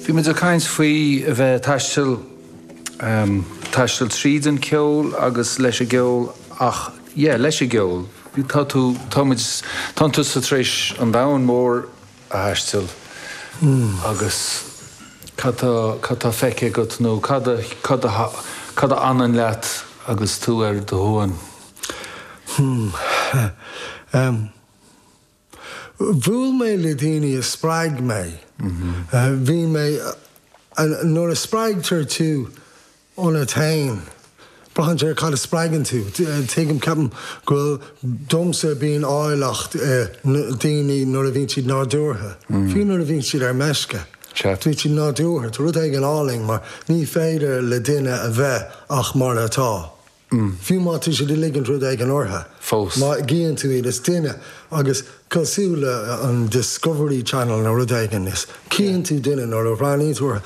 Bhí muid ag caint faoi a bheith ag taisteal, em, taisteal tríd an cheol agus leis an gceol ach, yeah, leis an gceol. Tá tú, tá muid, tánn tusa tar éis an domhan mór a thaisteal agus cad tá, cad tá feicthe agat nó cad a, cad a, cad a fhanann leat agus tú ar do shuan? Hmm, em. Bhuail mé le daoine a spreag mé. Bhí mé, nuair a spreagtar tú ionat fhéin, braitheann sé ar cad a spreagann tú. Tuigim, ceapaim go bhfuil, domsa bíonn áilleacht i ndaoine nuair a bhíonn siad nádúrtha, fiú nuair a bhíonn siad ar meisce. Ceart. Bíonn siad nádúrtha, tá rud éigin álainn mar ní féidir le duine a bheith ach mar atá. mm. Fiú má tá siad ag ligint rud éigin ortha, Fós. má fheiceann tú iad is duine agus cosúil leis an Discovery Channel nó rud éigin is cíonn tú duine nuair a bhreathnaíonn tú ortha.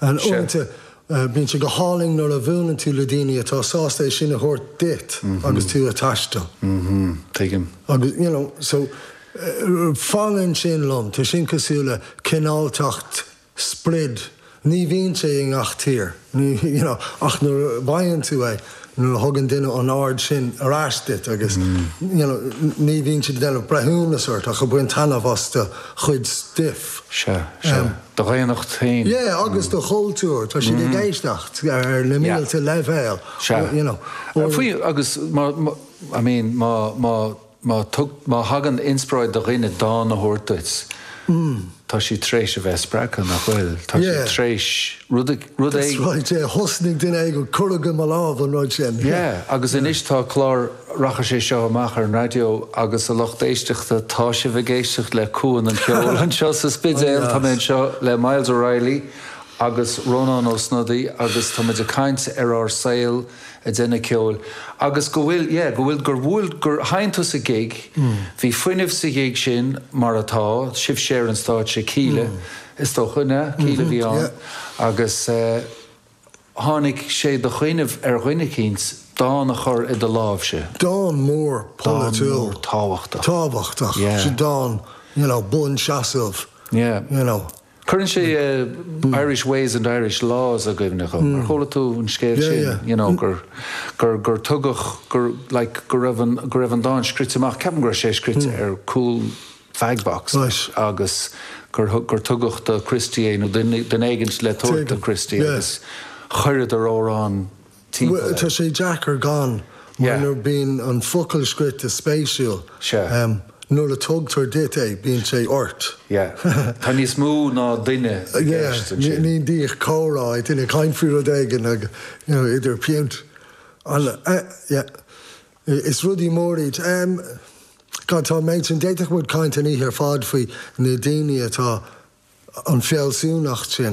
And Sure. uaireanta eh, bíonn sé go hálainn nuair a bhuaileann tú le daoine atá sásta é sin a thabhairt duit agus tú ag taisteal. Mhm. Tuigim. Agus you know, so eh, fanann sin liom, tá sin cosúil le cineáltacht sprid, ní bhíonn sé i ngach tír you know ach nuair a fhaigheann tú é, nuair a thugann duine an aird sin ar ais duit agus you know ní bhíonn siad ag déanamh breithiúnas ort ach ag baint taitneamh as do chuid stuif. Sea, sea. Do dhaonnacht féin. Yeah, agus do chultúr. Tá siad ag éisteacht ar na mílte leibhéal. Sea. You know. Faoi agus má I mean má Má thug, má thagann inspioráid do dhuine dán a thabhairt duit, tá siad tar éis a bheith spreagtha, nach bhfuil? Tá siad tar éis rud a, rud éigin. That's right, yeah. Thosnaigh duine éigin ag cur i mo lámh an rud sin. Yeah, agus anois tá clár, rachaidh sé seo amach ar an raidió agus a lucht éisteachta, tá sibh ag éisteacht le Cuan an Cheoil anseo sa Spidéal, tá mé anseo le Myles O'Reilly agus Rónán Ó Snodaigh agus tá muid ag caint ar an saol, a deineadh ceoil agus go bhfuil yeah go bhfuil gur bhuail gur sheinn tú sa gig bhí fuinneamh sa ghig sin mar atá sibhse ar an stáitse Kíla is dócha na Kíla bhí ann agus tháinig sé de chuimhneamh ar dhuine eicínt dán a chur i do láimhse dán mór polaitiúil tábhachtach tábhachtach yeah dán you know buanseasamh yeah you know. Cuireann sé Irish ways and Irish laws i gcuimhne dhom. Ar chuala tú an scéal sin, you know, gur, gur, gur tugadh, gur, like, go raibh an, go raibh an dán scrite amach, ceapaim go raibh sé scrite ar cúl fag box agus gur, gur tugadh do Christy é nó duine, duine éigint le tabhairt do Christy agus chuireadar amhrán, timpeall air. Tá sé deacair gan, mar nuair a bhíonn an focal scríte spéisiúil, nuair a tugtar duit é, bíonn sé ort. Yeah. Tá níos mó ná duine i gceist ansin. Yeah. Ní díth comhrá é, duine ag caint faoi rud éigin agus, you know, idir piúnt. Yeah. Is rudaí mór iad. God, tá an méid sin, d'fhéadfadh muid caint an oíche ar fad faoi na daoine atá, an fhealsúnacht sin.